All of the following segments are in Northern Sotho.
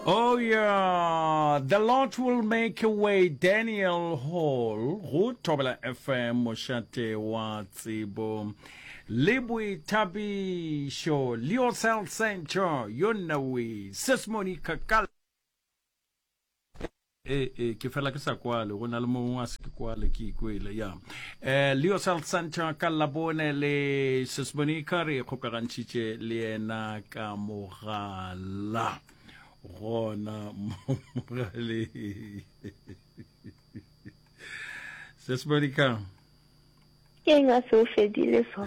Oh yeah, the Lord will make a way, Daniel Hall, go Thobela FM, mošate wa tsebo. Le boithabišo, Leo Cell Center, yo nnawe, Sesmoni Kakala. ee ee ke fela ke sa kwale go na le mongwe a se ke kwale ke ikwele ya um leo south center ka labone le sesmonika re kgokagantšhitše le yena ka mogala gona mogaleng sesmonika ke eng a se o fedile so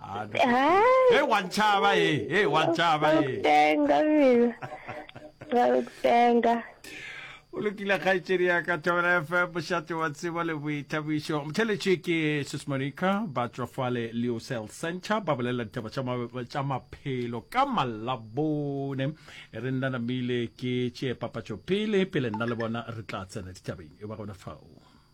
Ah, no. Hi. Hey, one chava, hey, hey, one chava, hey. Tenga, mina. Ra tenga. o lokile kgaetsedi ya ka thobela fm mošate wa tsebo le boithabišo motheletše ke sismonica ba tswafale leocel center ba bolelela ditaba tša maphelo ka malabone re nna namile ke tšee papatšo pele pele nna le bona re tla tsena ditabeng e ba gona fao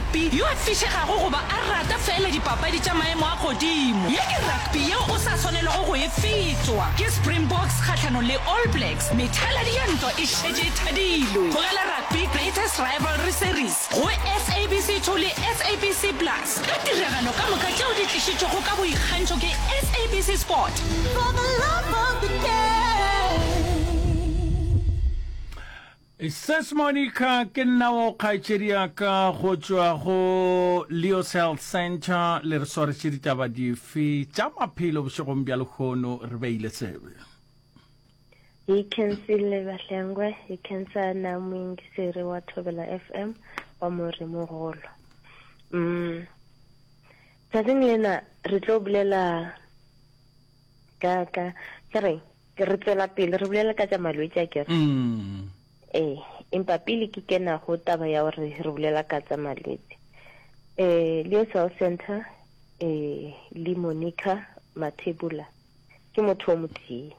rugby yo a fišegago goba a rata feela dipapadi tša maemo a godimo. Ye ke rugby yeo o sa swanelego go e fetšwa. Ke Springboks kgahlanong le All Blacks, methaladi ya ntwa e šetše e thadilwe. Tlogela rugby Greatest Rivalry Series go SABC 2 le SABC Plus ka tiragalo ka moka tšeo di tlišitšwego ka boikgantšho ke SABC Sport. For the love of the game. Sis Monica, ke nna wo kgaetšedi ya ka go tšwa go Leos Health Centre. Le re swaretše ditaba dife tša maphelo bošegong bja lehono? Re beile tsebe. Hi Kensi le Bahlengwe, hi Kensa na moingiseri wa Thobela FM wa Morimogolo. Mm. Tsatsing lena re tlo bulela ka ka ke reng? Ke re tšwela pele re bolele ka tša malwetši a kere? Ee, empa pele ke kena go taba ya gore re bolela ka tsa malwetši, um Leo Cell Centre um le Monica Mathebula ke motho o motee.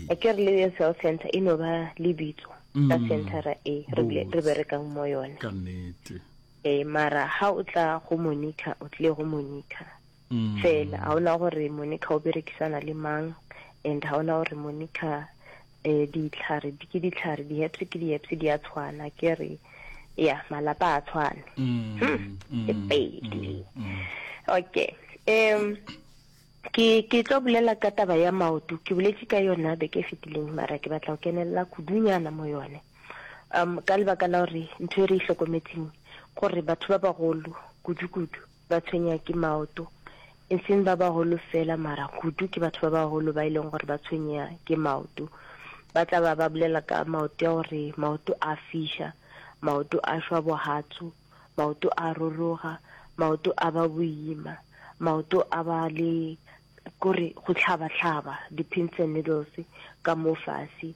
A ke re Leo Cell Centre e no ba lebitso ka centera e re berekang mo yone. Ka nnete. Eh, mara ha o tla go Monica o tlile go Monica. mm. fela ga ona gore monica o berekisana le mang and ga ona gore monica um ditlhare ke ditlhare di-heps ke di-heps di a tshwana ke re ya malapa a tshwane mm, hmm, mm, ke pedi okay um ke ke tlo bolela ka taba ya maoto ke boletse ka yona beke e fetileng mara ke batla go kenelela kudunyana mo yone um ka lebaka la gore ntho e re e tlhokometseng gore batho ba bagolo kudu-kudu ba tshwenywa ke maoto, e seng ba bagolo fela, mara kudu ke batho ba bagolo ba e leng gore ba tshwenywa ke maoto. Ba tla ba ba bolela ka maoto ya gore maoto a fiša, maoto a šwa bohatsu, maoto a roroga, maoto a ba boima, maoto a ba le kore go hlaba-hlaba, di-pins and needles ka mo fase.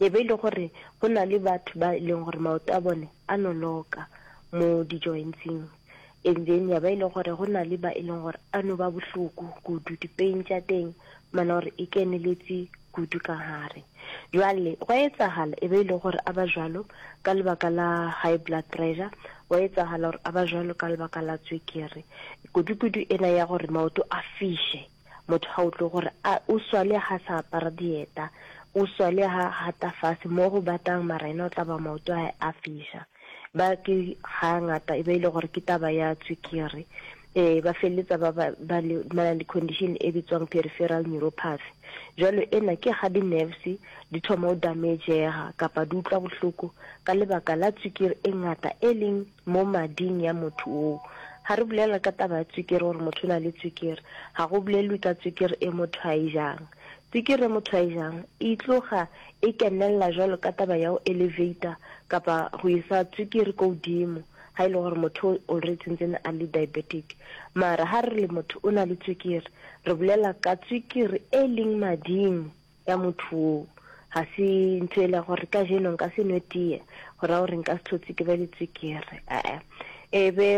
E be e le gore go na le batho ba e leng gore maoto a bone a noloka mo di-jointsing, and then ya ba e le gore go na le ba e leng gore a no ba bohloko kudu, di-pain tša teng mana gore e keneletse kudu ka gare. Jwale gwa etsagala e be e le gore a ba jwalo ka lebaka la high blood pressure, gwa etsagala gore a ba jwalo ka lebaka la tswekere, kudukudu ena ya gore maoto a fiše. Motho ga utlwe gore a o swale ha sa apara dieta, o swale ha gata fase mo go batang mara ena o tla ba maoto a a fiša. Ba ke ga ngata e ba ile gore ke taba ya tswikiri. Eh ba feleletsa ba ba ba le mana le condition e bitswang peripheral neuropathy. Jwale ena ke ga di nerves di thoma o damagega kapa di utlwa bohloko ka lebaka la tswikiri e ngata e leng Mo mading ya motho woo. Ga re bolela ka taba ya tswikiri gore motho o na le tswikiri. Ga go bolelwe ka tswikiri e motho a e jang. Tswikiri e motho a e jang e tloga e kenelela jwalo ka taba ya go elevator kapa go isa tswikiri ko godimo ga e le gore motho o already tsentsene a le diabetic. Mara ga re le motho o na le tswikiri, re bolela ka tswikiri e leng mading ya motho woo. Ga se ntho e le gore ka jeno nka se nwe tie go ra gore nka se tlhotse ke be le tswekere ee e be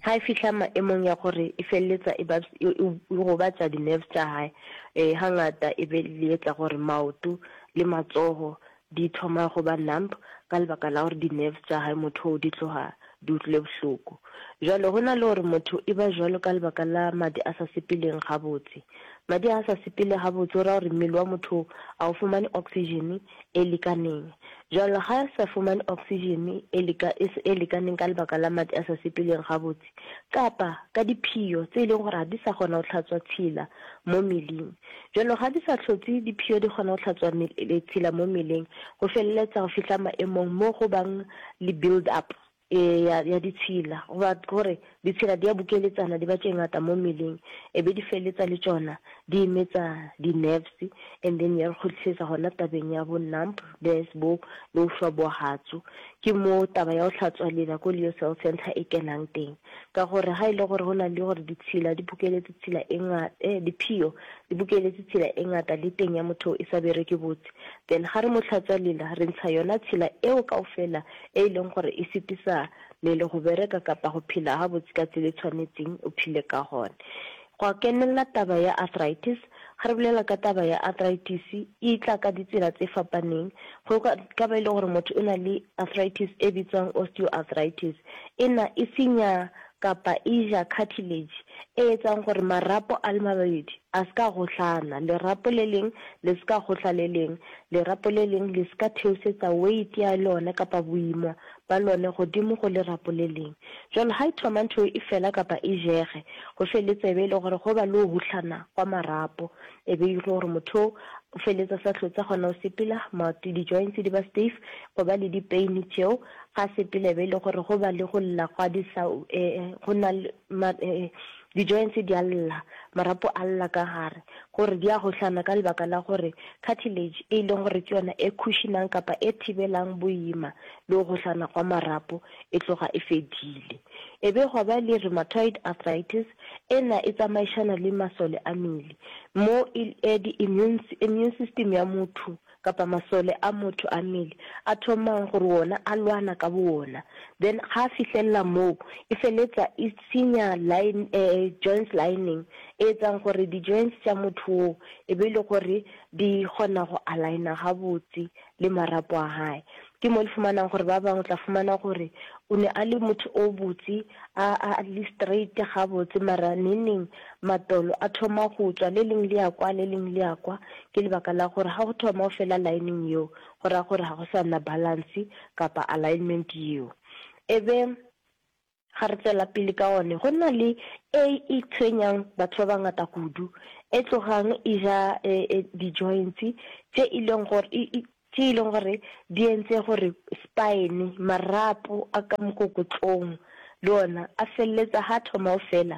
ga e fihla maemong ya gore e feleletsa e, e, e gobatsa di-nerves tša gae um e ga ngata e be le etsa gore maoto le matsogo di thoma go ba numb ka lebaka la gore di-nerves tša gae motho oo di tloga di utlwile bohloko. Bjale go na le gore motho e ba bjalo ka lebaka la madi a sa sepeleng gabotse. Madi a a sa sepele gabotse go ra gore mmele wa motho oo a o fumane oxygen e lekaneng. Bjale ga e sa fumane oxygen e leka e lekaneng ka lebaka la madi a sa sepeleng gabotse kapa ka diphio tse e leng gore ga di sa kgona go hlatswa tshila mo meling, Bjalo ga di sa hlotse diphio di kgona go hlatswa letshila mo mmeleng go feleletsa go fihla maemong mo go bang le build up e ya, ya ditshila goba gore ditshila di a bukeletsana di ba tše ngata mo mmeleng e be di feleletsa le tšona di emetsa di-nerves and then ya re kgotlisetsa gona tabeng ya bo numb des bo bo šwa bo hatsu. Ke mo taba ya go hlatswa lela ko Leo Cell Centre e kenang teng. Ka gore ga e le gore go na le gore ditshila di bukeletše tshila e ngata, eh, diphio di bukeletše tshila e ngata le teng ya motho e sa bereke botse, then ga re mo hlatswa lela, re ntsha yona tshila eo kaofela e e leng gore e sitisa lele go bereka kapa go phela gabotse ka tsela e tshwanetseng o phile ka gona. Gwa kenelela taba ya arthritis. Ga re bolela ka taba ya arthritis, e tla ka ditsela tse fapaneng. Go ka ba e le gore motho o na le arthritis e bitswang osteoarthritis. Ena e senya kapa e ja cartilage e etsang gore marapo a le mababedi a se ka gohlana, lerapo le leng le se ka gohla le leng, lerapo le leng le se ka theosetsa weight ya lone kapa boima ba lone godimo go le rapoleleng. Bjalo ha e thoma ntho e fela kapa e jege, go feletse e be e le gore go ba le o huhlana gwa marapo, e be e le gore motho o o feletse a sa hlotse a kgona go sepela, maoto, di-joints di ba stiff, go ba le di-pain tšeo, ga a sepela e be e le gore go ba le go lla gwa di-saw, go na le, Di-joints di a lla, marapo a lla ka gare, gore di a gohlana ka lebaka la gore cartilage, e e leng gore ke yona e khušinang kapa e thibelang boima le go gohlana gwa marapo, e tloga e fedile. E be gwa ba le rheumatoid arthritis, ena e tsamaišana le masole a mmele, mo e, di-immune, immune system ya motho kapa masole a motho a mmele a thomang gore wona a lwana ka bowona then ga a fihlelela moo e feletsa e senya line eh, joints lining e etsang gore di joints tša motho wo e be e le gore di kgona go aligna gabotse le marapo a hae Ke mo le fumanang gore ba bangwe o tla fumana gore o ne a le motho o botse, a, a le straight gabotse, mara neneng matolo a thoma go tswa, le leng le ya kwa, le leng le ya kwa. Ke lebaka la gore ga go thoma o fela lining yeo, go raya gore ga go sa nna balance kapa alignment yeo. E be Ga re tšwela pele ka one, go na le e e tshwenyang batho ba bangata kudu, e tlogang e ja e, e, di-joints tše e leng gore e, e, tše e leng gore di entse gore spine, marapo a ka mokokotlong, le ona a feleletsa ga thoma o fela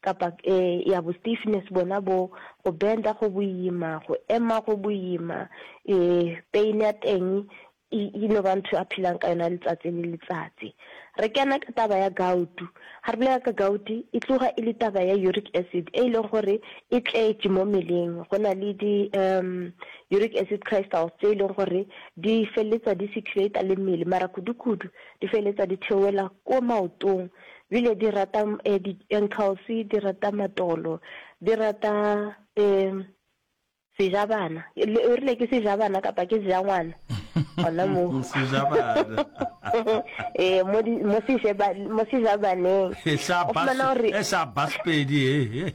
kapa e, ya bo stiffness bona bo go benda go boima go ema go boima e, pain ya teng e, e no ba ntho a philang ka yona letsatsi le letsatsi re kena ka taba ya gautu ga re bolela ka gauti e tloga e le taba ya uric acid e e leng gore e tletše mo meleng go na le di um uric acid crystals tse e leng gore di feleletsa di circulata le mmele mara kudu-kudu di feleletsa di theoela ko maotong bile di rata eh, di enkgauswi di rata matolo di rata eh, sejabana Le- o rile ke sejabana kapa ke sejangwana gona mo sejabana eh, mo di- mo sejeba- mo sejabaneng O fumana gore- e sa basepedi e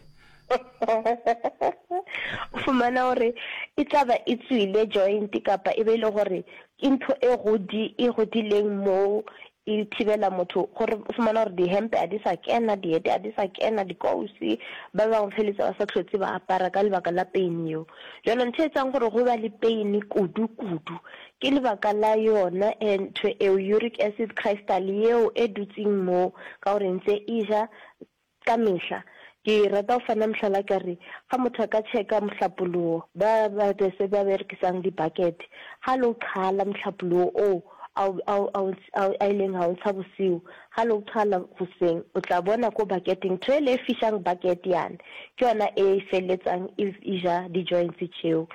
o fumana gore e tla ba e tswile joint kapa e be e le gore ke ntho e godi e godileng moo e thibela motho gore o fumana gore dihempe a di sa kena diete a di sa kena dikousi ba bangwe feletse ba sa tlhotse ba apara ka lebaka la pain eo jalo ntho e tsang gore go ba le pain kudu kudu ke lebaka la yona e ntho eo uric acid crystal eo e dutseng moo ka gore ntse e ja Ka mehla, ke rata go fana mohlala ka re, ga motho a ka tšheka mohlapologo, ba ba bese ba berekisang dibakete, ga le o qhala mohlapologo oo a o, a o, a o, a o, a ileng a o ntsha bosiu, ga le o qhala goseng, o tla bona ko baketeng, ntho ele e fišang bakete yane, ke yona e feleletsang e, e ja di-joints tšeo.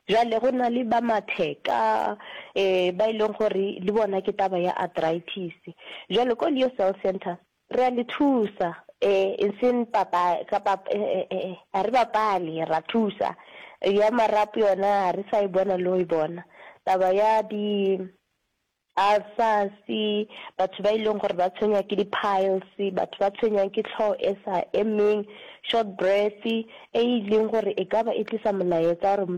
Bjale go na le ba matheka, um ba e leng gore le bona ke taba ya arthritis. Bjale ko Leo Cell Centre, Re a le thusa, e, e seng papa, ka pap, e, e, e, ga re bapale, ra thusa. Ya marapo yona ga re sa e bona le go e bona. Taba ya di ulcers, batho ba e leng gore ba tshwenywa ke di-piles, batho ba tshwenyang ke tlhogo e sa emeng, short breath, e e leng gore e ka ba e tlisa molaetsa gore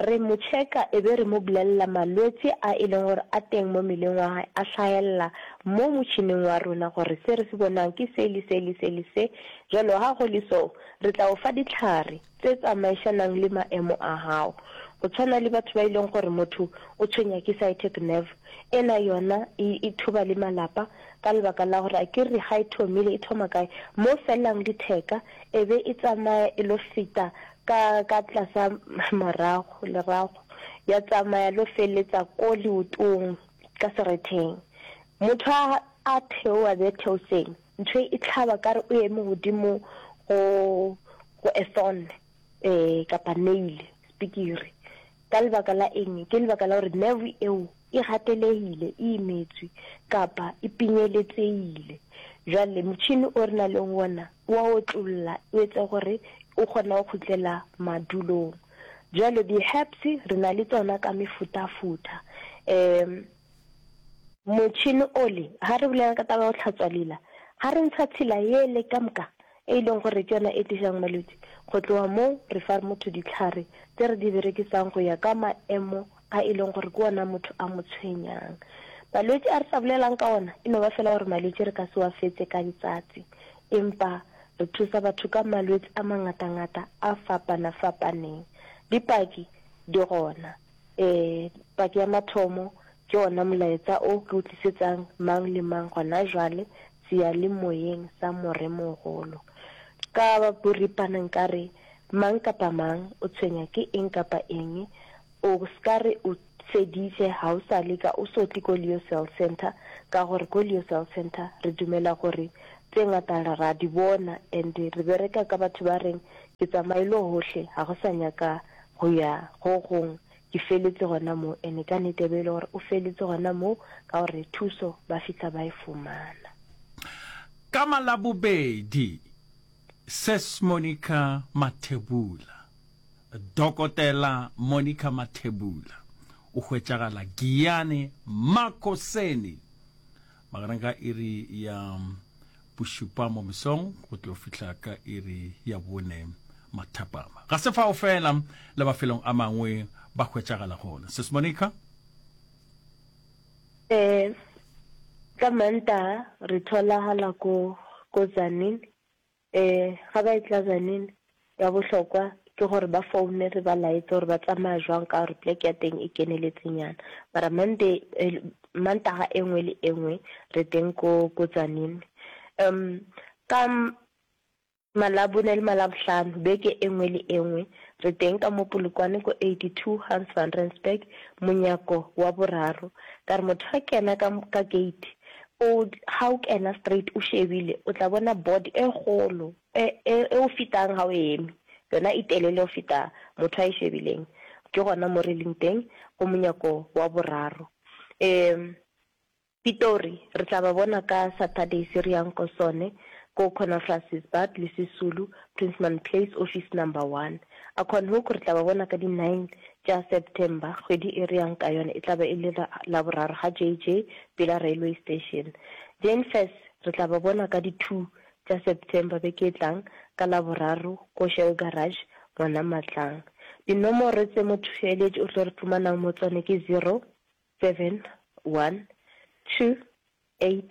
Re mo tšheka e be re mo bolelela malwetsi a e leng gore a teng mo meleng wa gae a hlahelela mo motšhining wa rona gore se re se bonang ke se le se le se le se. Bjalo ga go le so re tla o fa dihlare tse tsamaišanang le maemo a gago. Go tshwana le batho ba e leng gore motho o tshwenya ke sciatic nerve, ena yona e e thoba le malapa ka lebaka la gore a ke re ga e thomile e thoma kae? Mo felelang letheka e be e tsamaya e lo feta Ka, ka tlasa marago, lerago, ya tsamaya lo feletsa ko leotong, ka seretheng. Motho a, a theoa bje theoseng, ntho e hlaba ka re o eme godimo go, go a thorn, ee, kapa nail, spikiri. Ka lebaka la eng? Ke lebaka la gore nerve eo e gatelegile, e imetswe, kapa e pinyeletsegile. Jwale motšhini o re na leng wona wa otlolola, o etsa gore o kgona go khutlela madulong. Jwale di-herbs re na le tsona ka mefutafuta. Um motšhini ole, ha re bolela ka taba ya go tlhatswa lela, ha re ntsha tshila ele ka moka, e leng gore ke yona e tlišang malwetši. Go tloga moo, re fa motho dihlare tše re di berekisang go ya ka maemo a e leng gore ke ona motho a mo tshwenyang. Malwetši a re sa bolelang ka ona e no ba fela gore malwetši re ka se wa fetse ka letsatsi, empa re thusa batho ka malwetši a mangatangata a fapanafapaneng. Dipaki di gona, ee, paki ya mathomo, Ke wona molaetsa o ke o tlisetsang mang le mang gona jwale seyalemoyeng sa Moremogolo. Ka boripana nka re, Mang kapa mang o tshwenya ke eng kapa eng, o s'ka re o feditše ga o sa leka, o s'o tle ko Leo Cell Centre, ka gore ko Leo Cell Centre re dumela gore tše ngata re a di bona and re bereka ka batho ba reng ke tsamaile gohle, ga go sa nyaka go ya go gong Ke feletše gona moo, ene ka nete e be e le gore o feletše gona moo, ka gore thuso ba fihla ba e fumana. Ka Malabobedi, Ses Monica Mathebula, Dokotela Monica Mathebula, o hwetšagala Giyane Makoseni magareng ga iri ya bošupa mo mesong go tlo fihla ka iri ya bone mathapama ga se fao fela le mafelong a mangwe ba hwetšagala gona sis monica um ka manta re tholagala ko ko tsanin Ee, ga ba etla Benin, ya bohlokwa ke gore ba foune re ba laetse gore ba tsamaya jwang ka gore plek ya teng e keneletsenyana. Mara Monday, Mantaga e nngwe le e nngwe re teng ko, ko Tzaneen. Um, ka Malabone le Malabohlano, beke e nngwe le e nngwe re teng ka mo Polokwane ko 82 Hans van Rensburg, monyako wa boraro. Ka re motho a kena ka, ka gate, Old, ga o kena straight o šebile o tla bona board e kgolo e, e, e o fetang ga o eme, yona e telele go feta motho a e šebileng. Ke gona mo re leng teng, go monyako wa boraro. Um, Pitori re tla ba bona ka Saturday se re yang ko sone, ko Conafrancesbad le Sisulu, Prinsman Place, office number one. A Qualhoek re tla ba bona ka di nine tša September, kgwedi e re yang ka yona e tla ba e le la Laboraro ga JJ pela railway station. Jane-Fess re tla ba bona ka di two tša September beke e tlang ka Laboraro ko Shell Garage gona Matlang. Dinomoro tše mothoeletši o tlo re tlomanang mo tsone ke zero, seven, one, two, eight,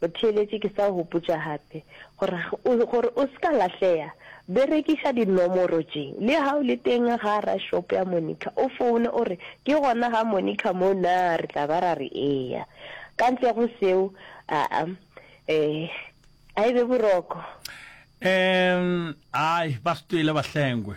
Go theeletše ke sa o gopotša gape, gore, gore o se ka lahlega, berekiša dinomoro tše. Le ga o le teng gara šopo ya Monica, o foune o re, Ke gona ga Monica moo na? Re tla ba ra re, Eya. Ka ntle go seo, aa, ee, a e be boroko. Ee, ai, ba štwele ba hlengwe.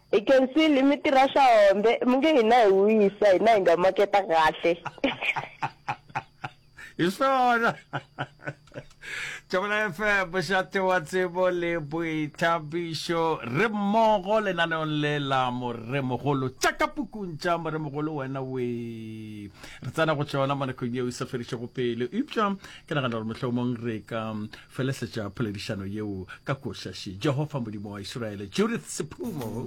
Hi can see le mi tirha swa hombe mi nge hina hi wisa hina hi nga maketa kahle. Hi swona. Tšabela FM mošate wa tsebo le boithabišo re mmogo lenaneong le la moremogolo tša ka pukung tša moremogolo wena we re tsena go tšona mo nakong yeo e sa fedišego pele eupša ke nagana gore mohlomong re ka felesetša poledišano yeo ka košaši jehova modimo wa iseraele judith sephumo